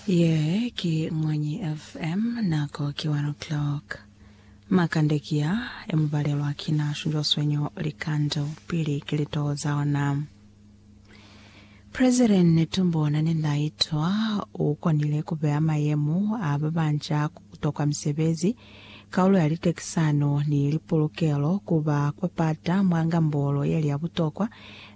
Ye ki Mwanyi FM, nako ki one o'clock. Makande ki ya e mu balelwa ki na shunjwa swenyo likando pili ki litoho za ona. President Netumbo Nandi-Ndaitwah u konile ku beya mayemo a ba banca ku tokwa misebezi Kaulo ya litekisano ni lipulukelo ku ba kwa pata mwa ngambolo ye li ya butokwa,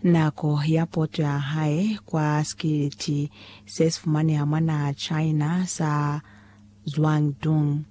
nako ya poto ya hae kwa sikiliti se si fumaneha mwa naha China sa Zhuangdong.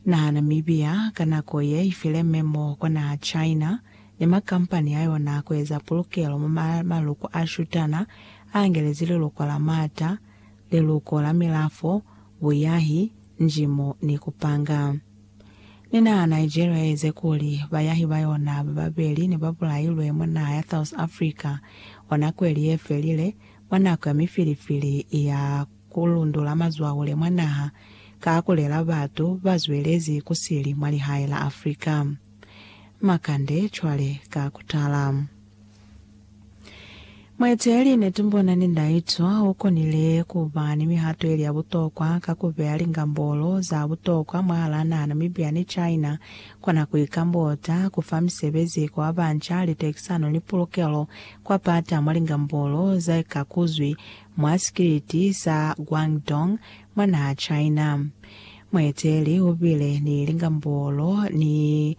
Naha Namibia ka nako ye i file memo kwa naha China ni makampani a yona ku eza pulukelo mwa maluko a shutana a angelezi liluko la mata, liluko la milafo, buyahi, njimo ni ku panga. Ni naha Nigeria ye ize kuli bayahi ba yona ba babeli ne ba bulailwe mwa naha ya South Africa mwa nako ili ye felile, mwa nako ya mifilifili ya ku lundula mazwahule mwa naha ka ku lela batu ba zwelezi ku sili mwa lihae la Africa. Makande cwale ka ku tala. Mueteeli Netumbona ni Ndaitwa ukonile kuba ni mihato yeli ya butokwa ka kubeya lingambolo za butokwa mwahalaa naha Namibia ni China kona kuikambota, kufa misebezi kwa babanca, litekisano ni pulukelo kwa pata mwa lingambolo zaikakuzwi mwa sikiliti sa Guangdong mwa naha China. Mueteeli ubile ni lingambolo ni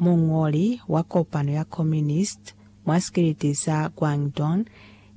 Muñoli wa kopano ya Communist mwa sikiliti sa Guangdong,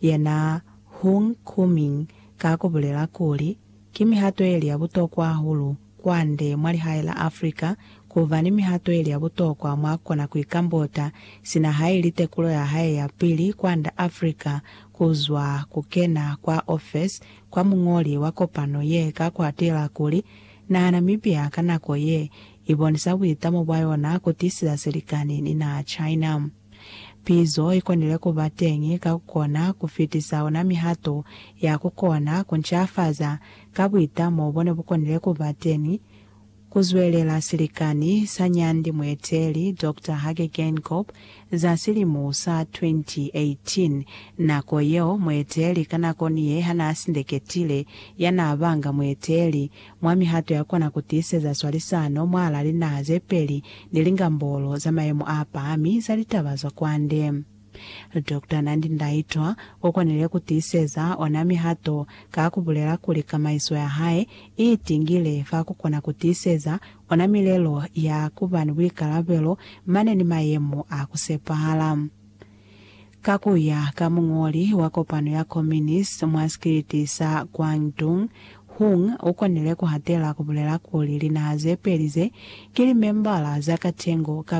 yena Hung Kuming, ka ku bulela kuli, Ki mihato yeli ya butokwa hahulu kwande mwa lihae la Africa ku ba ni mihato yeli ya butokwa mwa kona ku ikambota, sina haili tekulo ya hae ya pili kwanda Africa ku zwa ku kena kwa ofesi kwa muñoli wa kopano ye ka ku atela kuli, Naha Namibia ka nako ye I bonisa buitamo bwa yona ku tiiseza silikani ni naha China. Pizo i konile ku ba teñi ka ku kona ku fitisa ona mihato ya ku kona ku ncafaza ka buitamo bo ne bu konile ku ba teñi, ku zwelela silikani sa nyandi mueteli Doctor Hage Geingob za silimu sa 2018, nako yeo mueteli ka nako ni ye ha naa sindeketile ya naa banga mueteli mwa mihato ya kona ku tiiseza swalisano mwahal'a linaha ze peli ni lingambolo za mayemo a pahami za litaba za kwande. Doctor Nandi Ndaitwah u konile ku tiiseza ona mihato ka ku bulela kuli kamaiso ya hae i itingile fa ku kona ku tiiseza ona milelo ya ku ba ni buikalabelo mane ni mayemo a ku sepahala. Ka ku ya ka muñoli wa kopano ya Komunist mwa sikiliti sa Guangdong, Hung u konile ku hatela ku bulela kuli linaha ze peli ze ki limembala za katengo ka